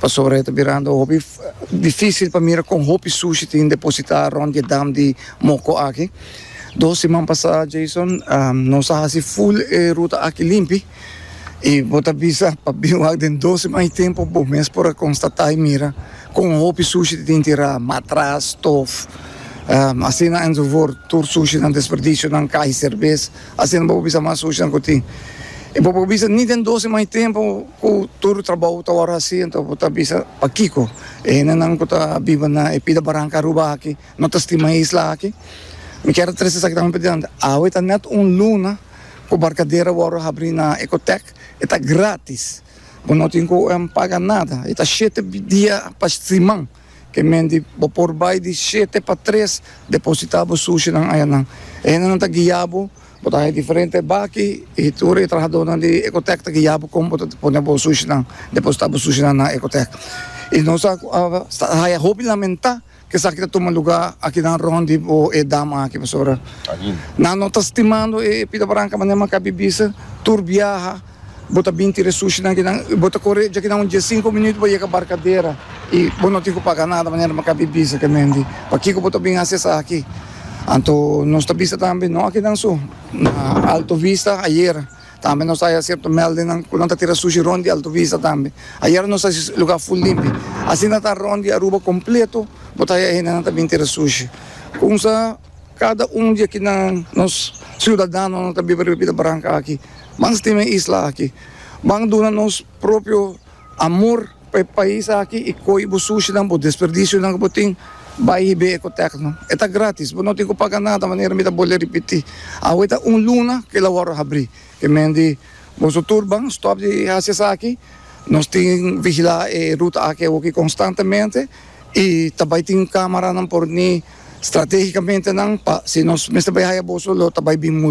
Pasobra e ta birando hopi difísil pa mira kon hopi sushi tin depositá rònt di e dam di Moko aki. Dos siman pasá, Jason, nos a hasi ful e ruta aki limpi i bo ta bisa pa bin wak den dos siman i tempu bo mes por a konstatá i mira kon hopi sushi tin tin tirá, matras, stof, asina en su for. Tur sushinan, desperdisionan, kai, serbes, asina bo por bisa mas sushinan ku tin i bo por bisa ni den dos siman i tempu. Ku tur trabou ta wòrdu hasi, anto bo ta bisa pakiko e hendenan ku ta biba na e pida baranka Aruba aki no ta stima e isla aki? Mi kier a trese esaki tambe p'e dianti. Awe ta nèt un luna ku Barkadera wòrdu habrí na Ecotec. E ta grátis. Bo no tin ku UM paga nada. E ta shete dia pa siman. Ke menti, bo por bai di shete pa tres depositá bo sushinan ayanan. E hendenan ta guia bo, bo ta haña diferente baki i tur e trahadónan di Ecotech ta guia bo kon bo ta pone bo sushinan, depositá bo sushinan na Ecotech. I nos a haña hopi lamentá ku esaki ta tuma lugá akinan rònt di bo e dama aki pasobra nan no ta stimando e Pita Branca manera maka bibisa tur biaha. Bo ta bin tira e sushinan aki nan i bo ta kore djaki nan un dies sinku minüt bo yega Barkadera i bo no tin ku paga nada manera bo ka bin bisa kemen di pakiko bo ta bin hasi esaki. Anto nos ta bisa tambe no aki nan so na Alto Vista ayer tambe nos ta haya sierto mèldennan ku nan ta tira sushi rònt di Alto Vista tambe. Ayer nos hasi e lugá ful limpi. Asina ta rònt di Aruba kompleto bo ta haya hendenan ta bin tira sushi. Kumsa? Kada un di akinan, nos siudadanonan ta biba riba bida branca aki. Ban stima e isla aki. Ban duna nos propio amor pa e pais aki y coge bo sushinan, bo desperdicionan cu bo tin, bay hib'é Ecotecno. E ta gratis, bo no tin cu paga nada, manera mi ta bole ripiti. Awe ta un luna cu el a wordo habri. Ke men di boso tur ban stop di haci esaki. Nos tin vigila e ruta aki awoki constantemente. y ta bay tin camaranan por ni strategicamente nan pa si nos mester bay haya boso lo ta bay bin mul.